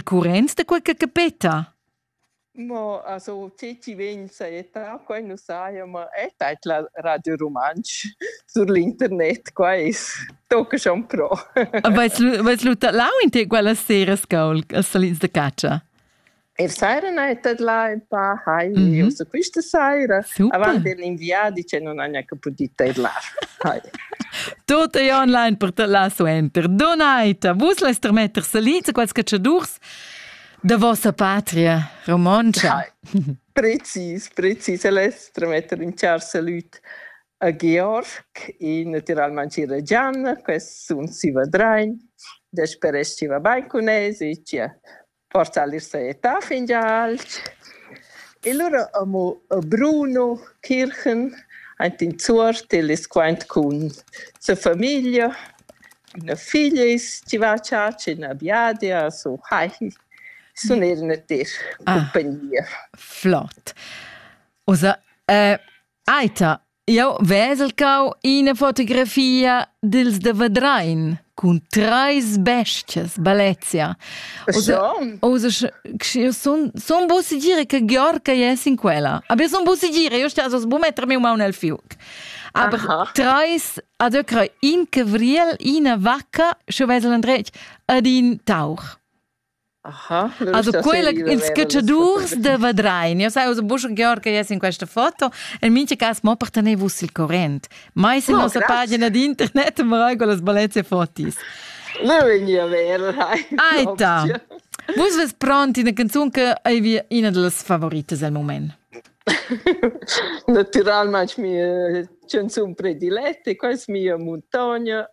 Currents da quella capeta? Mo also te ti vegn saetta quai nu saja ma è tait la Radio Rumantsch sur l'internet quais tocca schon pro. Vais vais lu lau in te quella sera scaul als salins da caccia? Er sera na è là in pa hai mm -hmm. uso questa sera. Super. Avanti l'inviati c'è non ha neanche potuto ir là. Tut ei online per tala suenter. Donaita, vus leis termetter salins a quels cacciadurs da vossa patria romontscha. Precis, precis. El es tremetter in char salut a Georg e naturalmente ir a Gianna, quest sun si vadrein, desperesci va bain cun es e chia Forsa al es sta fingià alch. E lura amo Bruno Kirchen aint in Zuort, el es quaint cun sa famiglia. Üna figlia es chi va a chatscha in üna biadia, so hai. Sun eir üna ter cumpagnia. Ah, flot. Oza, eita, Jau vesel cau ina fotografia dils de Vedrein cun treis bestias Balezia. Io son son bussi dire che Georg è in quella. Aber son bussi dire, io sta so sbu mettermi un mano nel fiuc. Aber Aha. treis ad öcra in cavriel, ina vacca, schon vesel andretg, ad in tauch. Aha, also quella ils cacciadurs da Vadrein. Io sai, usa busch Georg che es in questa foto. In mincha cas mo per tener vus il corrent. Mai se oh, nossa pagina di internet mo regol las balezze fotis. Ne vegni a ver, dai. Aita. Vus ves pronti una canzone che è una delle favorites al moment. Naturalmente mia canzone prediletta, questa mia montagna